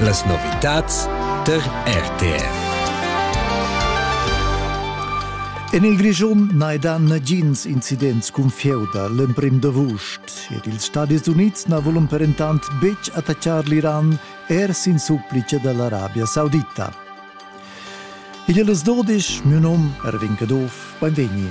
Las novitads tar RTR. En il Grischun n'hai dà nagins incidents cun feuda l'emprim d'avust ed ils Stadis Unids na vulon perentant betg attaccar l'Iran er sin supplice da l'Arabia Saudita. Igl es dudisch, miu nom Erwin Caduff, beinvegni.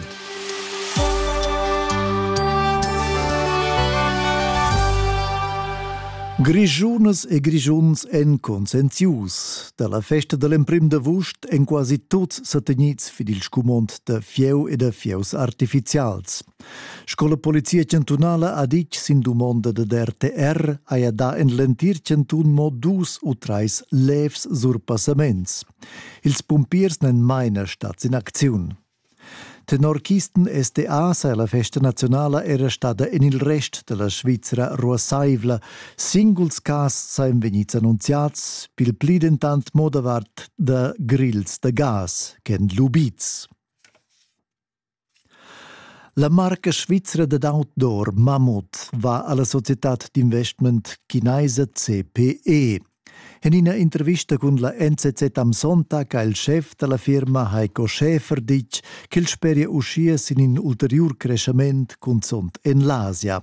Grischunas e Grischuns èn conscienzius da la festa da l'emprim d'avust èn quasi tuts sa tegnits vid il scumond da fieu e da fieus artifizials. Sco la Polizia chantunala ha ditg sin dumonda dad RTR haja dà en l'entir chantun mo dus u trais levs surpassaments. Ils pumpiers n'èn maina stads in acziun. Tenor Kisten SDA saja la festa nazionala era stada en il rest da la Svizra ruassaivla. Singuls cas sajan vegnids annunziads, pil pli dentant mo davart da grils da gas ch'èn lubids. La marca svizra dad outdoor Mammut va alla societad d'investment chinaisa CPE. En ina intervista cun la NZZ am Sonntag ha il schef dalla firma Heiko Schäfer ditg ch'el speria uschia sin in ulteriur creschament cunzont en l'Asia.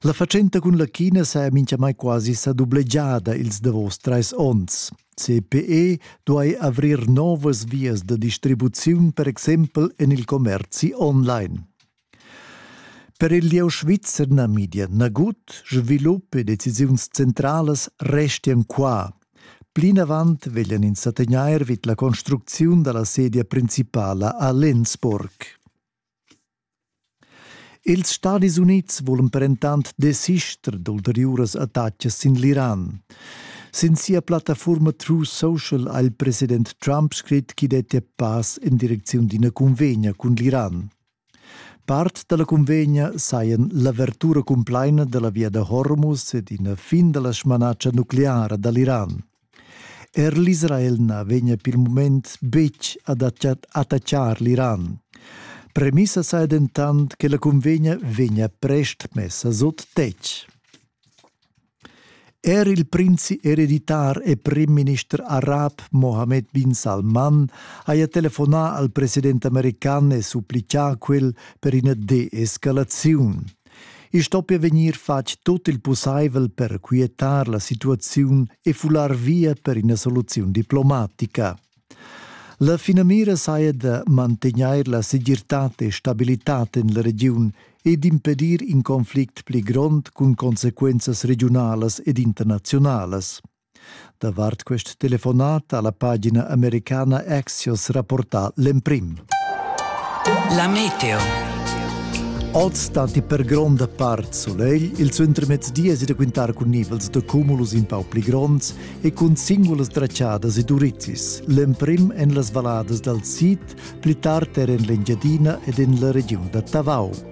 La fatschenta cun la China s'è minchamai quasi sa dublegiada ils davos trais onns. CPE duai avrir novas vias da distribuziun, per exempel en il commerzi online. Per il lieu svizzer Namibia nagut, svilup e decisiuns centralas restian qua. Plinavant veglian ins sa tegnair vid la construcziun da la sedia principala a Lenzburg. Ils Stadis Unids vulan dentant desister d'ulteriuras attacas sin l'Iran. Sin sia plattafurma True Social ha il president Trump scrit ch'i dettia pass en direcziun d'ina cunvegna cun l'Iran. Part da la cunvegna sajan l'avertura cumplaina da la via da Hormuz ed ina fin da la smanatscha nucleara da l'Iran. Er l'Israel na vegnia per il mument betg ad attaccar l'Iran. Premissa saja dentant che la cunvegna vegnia prest messa sut tetg. Er il prinzi ereditar e premierminister arab Mohammed bin Salman haja telefonà al president american e supplicà quel per ina deescalaziun. I stoppia vegnir fatg tut il pussaivel per quietar la situaziun e fular via per ina soluziun diplomatica. La finamira saja da mantegnair la segirtad e stabilitad en la regiun e d'impedir in conflict pli grond cun consequenzas regiunalas ed internaziunalas. Davart quest telefonat ha la pagina americana Axios rapportà l'emprim. La meteo. Oz datti per gronda part sulegl, il suentermezdi è da quintar cun nivels da cumulus in pau pli gronds e cun singulas traciadas e durizis, l'emprim en las valladas dal sid, pli tard er en l'Engiadina ed en la regiun da Tavau.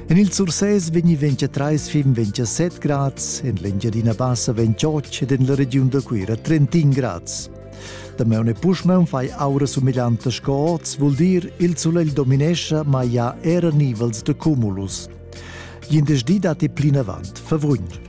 En il Sursès vegni 23 fin 27 grads, en l'Engiadina Bassa 28 ed en la regiun da Cuira 31 grads. Damaun e puschmaun fai aura sumeglianta sco oz, vul dir il sulegl dominescha, ma ia era nivels de cumulus. Glindesdi datti plinavant favugn.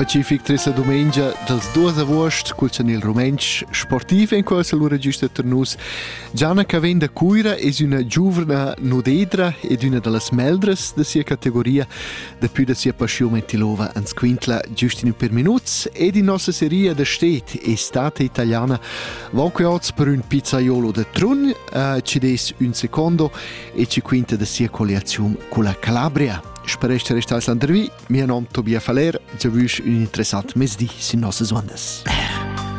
Pacific tresa dumengia dals 2 avuost cul chanel rumentsch sportiv en quels al register tar nus. Gianna che vegn da Cuira es üna giuvna nudedra ed üna da las meldras da sia categoria daplü da sia paschiun mentilova ans quintla giust in ün per minuts ed in nossa seria da stet Estate Italiana van que oz per ün pizzaiolo da Trun uh, ci des un secondo e ci quinta da sia colliaziun culla Calabria. Per ester restais landervi, mia nom Tobias Faller, giavüsch ün interessant mezdi sin nossas ondas.